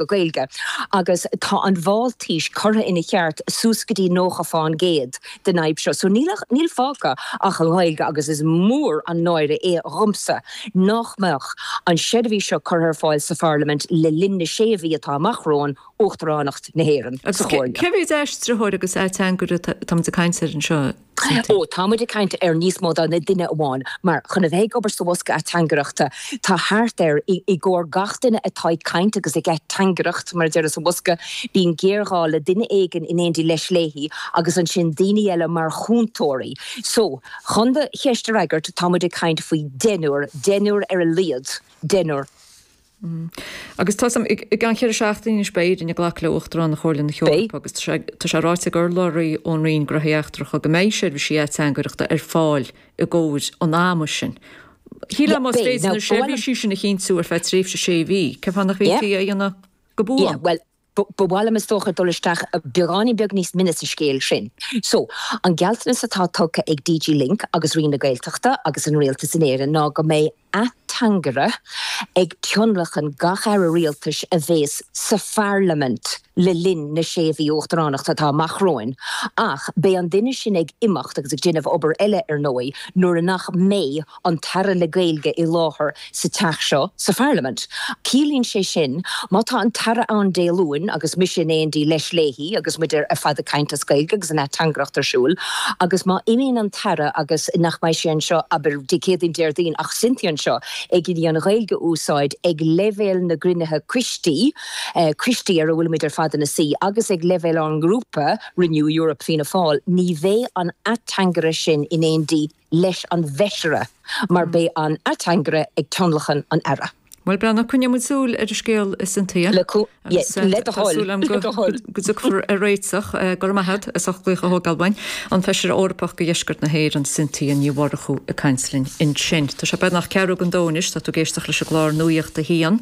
go Gaeilge agus tá an Mháltais curtha ina cheart suas go dtí nócha fán gcéad den fhadhb seo so níl ach, níl fágtha ach an Ghaeilge agus is mór an náire é dhomsa nách mbeadh an seirbhís seo curtha ar fáil sa Pharlaimint le linn na sé mhí atá amach romhainn, Uachtaránacht na hÉireann sa Chomhairle. Cé mhéid aistritheoir agus ateangaire atáimid ag caint ansin anseo? Cite. Ó tá muid ag caint ar níos mó ná duine amháin, mar chun a bheith ag obair sa bhosca ateangaireachta, tá thart ar, i gcomhair gach duine atá ag caint agus ag ateangaireacht, mar a deir sa bhosca, bíonn géarghá le duine éigin in éindí leis, léi, agus ansin daoine eile mar chúntóirí. So, chun do cheist a fhreagairt, tá muid ag caint faoi dheichniúr, deichniúr ar a laghad, deichniúr. Agus tá sam, i gceann cheithre seachtaine anois beidh Éire ag glacadh le hUachtaránacht Chomhairle na hEorpa agus tá sé, tá sé ráite ag urlabhraí ón Roinn Gnóthaí Eachtracha go mbeidh seirbhísí ateangaireachta ar fáil i gcomhair an ama sin. Shílfeá más féidir na seirbhísí sin a chinntiú ar feadh tréimhse sé mhí, cén fáth nach bhféadfaí é a dhéanamh go buan? Ba mhaith liom is dócha dul isteach beagáinín beag níos mine sa scéal sin. So, an gealltanas atá tugtha ag DG LINC agus Roinn na Gaeltachta agus an Rialtas in Éirinn ná go mbeidh ateangaire ag tionlacan gach Aire Rialtais a bhéas sa Pharlaimint le linn na sé mhí Uachtaránachta atá amach romhainn ach beidh an duine sin ag imeacht agus ag déanamh obair eile ar ndóigh nuair nach mbeidh an tAire le Gaeilge i láthair sa Teach seo sa Pharlaimint. Ciallaíonn sé sin, má tá an tAire ann Dé Luain agus mise in éindí leis, léi agus muid ar fad ag caint as Gaeilge agus an ateangaireacht ar siúl, agus má imíonn an tAire agus nach mbeidh sé anseo, abair, Dé Céadaoin, Déardaoin, ach Cynthia anseo ag iarraidh an Ghaeilge a úsáid ag leibhéal na gcruinnithe coistí, coistí ar a bhfuilimid ar fad ina suí, agus ag leibhéal ár ngrúpa, Renew Europe, Fianna Fáil, ní bheidh an ateangaire sin in éindí le. leis an bhFeisire, mar beidh an ateangaire ag tionlacan an Aire. Bhuel, coinneoidh muid súil ar an scéal, a Cynthia. Le do thoil, le do thoil. Tá súil agam go dtiocfar ar réiteach. Go raibh maith agat as ucht glaoch a thógáil uainn. An Feisire Eorpach do Dheisceart na hÉireann, Cynthia Ní Mhurchú ag caint linn ansin. Tá sé beagnach ceathrú go dó anois, tá tú ag éisteacht leis an gclár Nuaíocht a hAon.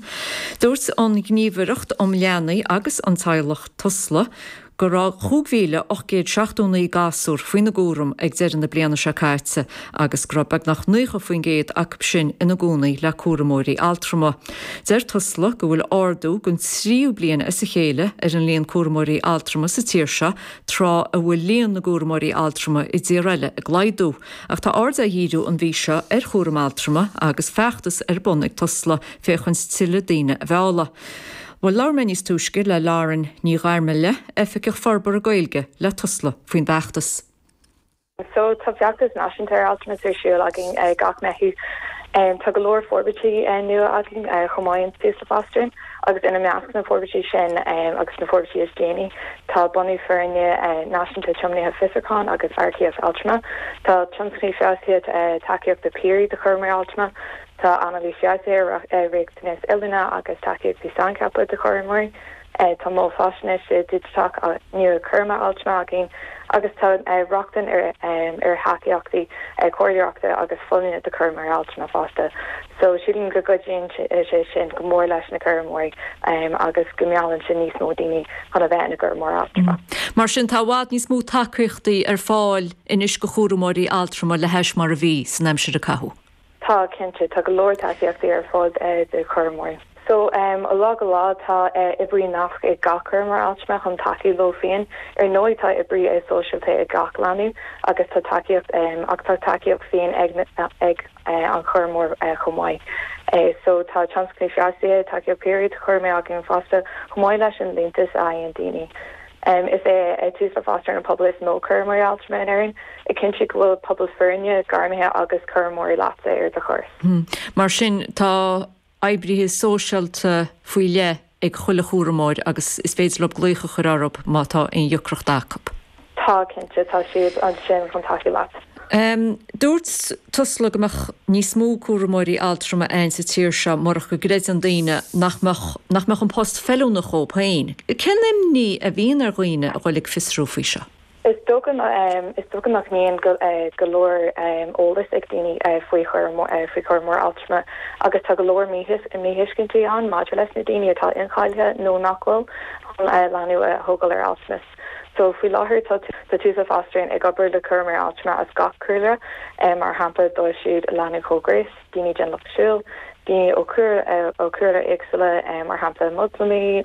Dúirt an Ghníomhaireacht um Leanaí agus an Teaghlach, Tusla, go. go raibh 5,879 gasúr faoina gcúram ag deireadh na bliana seo caite agus go raibh beagnach 90% acu sin ina gcónaí le cúramóirí altrama. Deir Tusla go bhfuil ardú don tríú bliain as a chéile ar an líon cúramóirí altrama sa tír seo tráth a bhfuil líon na gcúramóirí altrama i dtíortha eile ag laghdú. Ach tá aird á dhíriú an mhí seo ar chúram altrama agus feachtas ar bun ag Tusla féachaint tuilleadh daoine a mhealladh. Bhuel, labhair mé níos túisce le Lauren Ní Ghairmile, Oifigeach Forbartha Gaeilge le Tusla, faoin bhfeachtas. So, tá feachtas náisiúnta ar altramas ar siúl againn gach Meitheamh. Tá go leor forbairtí nua againn chomh maith in Tusla Fostering agus ina measc na forbairtí sin agus na forbairtí is déanaí tá bunú foirne náisiúnta tiomnaithe fiosrúcháin agus earcaíocht altrama. Tá tionscnaimh feabhsaithe tacaíochta piaraí do chúramóirí altrama. Tá anailís bheartaithe ar riachtanais oiliúna agus tacaíochtaí saincheaptha do chúramóirí. Tá mol faisnéise digiteach nua cúraim altrama againn agus tá rochtain ar thacaíochtaí comhairleoireachta agus folláine do chúramóirí altrama fosta. So, sílim go gcuidíonn sé sin go mór leis na cúramóirí agus go meallann sé níos mó daoine chun a bheith ina gcúramóir altrama. Mar sin, tá i bhfad níos mó tacaíochtaí ar fáil anois do chúramóirí altrama le hais mar a bhí san aimsir a caitheadh. Tá, cinnte, tá go leor tacaíochtaí ar fáil do chúramóirí. So, ó lá go lá tá oibrí nasc ag gach cúramóir altrama chun tacú leo féin. Ar ndóigh tá oibrí sóisialta ag gach leanbh agus tá tacaíocht, ach tá tacaíocht féin ag ag an chúramóir chomh maith. So, tá tionscnaimh feabhsaithe, tacaíocht piaraí, do chúramóirí againn fosta chomh maith leis an liúntas a fhaigheann daoine. Is é Tusla Fostering an pobal is mó cúramóirí altrama in Éirinn, ag cinntiú go bhfuil pobal foirne, gairmithe agus cúramóirí leat ar do thuras. Mar sin, tá oibrithe sóisialta faoi leith ag chuile chúramóir agus is féidir leo glaoch a chur orthu má tá aon dheacracht acu. Tá, cinnte. Tá siad ansin chun tacú leat. Dúirt Tusla go mbeadh níos mó cúramóirí altrama ann sa tír seo murach go gcreideann daoine nach mbeadh nach mbeadh an post feiliúnach dhóibh féin. Cén imní a bhíonn ar dhaoine a dhul ag fiosrú faoi seo? Is dócha is dócha nach mbíonn go leor eolas ag daoine faoi faoi chúramóir altrama agus tá go leor míthuiscintí ann maidir leis na daoine atá incháilithe nó nach bhfuil chun leanbh a thógáil ar altramas. So, faoi láthair tá tá Tusla Fostering ag obair le cúramóirí altrama as gach cúlra, mar shampla dóibh siúd i lánúin chomhghnéis, daoine den lucht siúil, daoine ó cúlra ó chúlraí éagsúla, mar shampla Moslamaigh,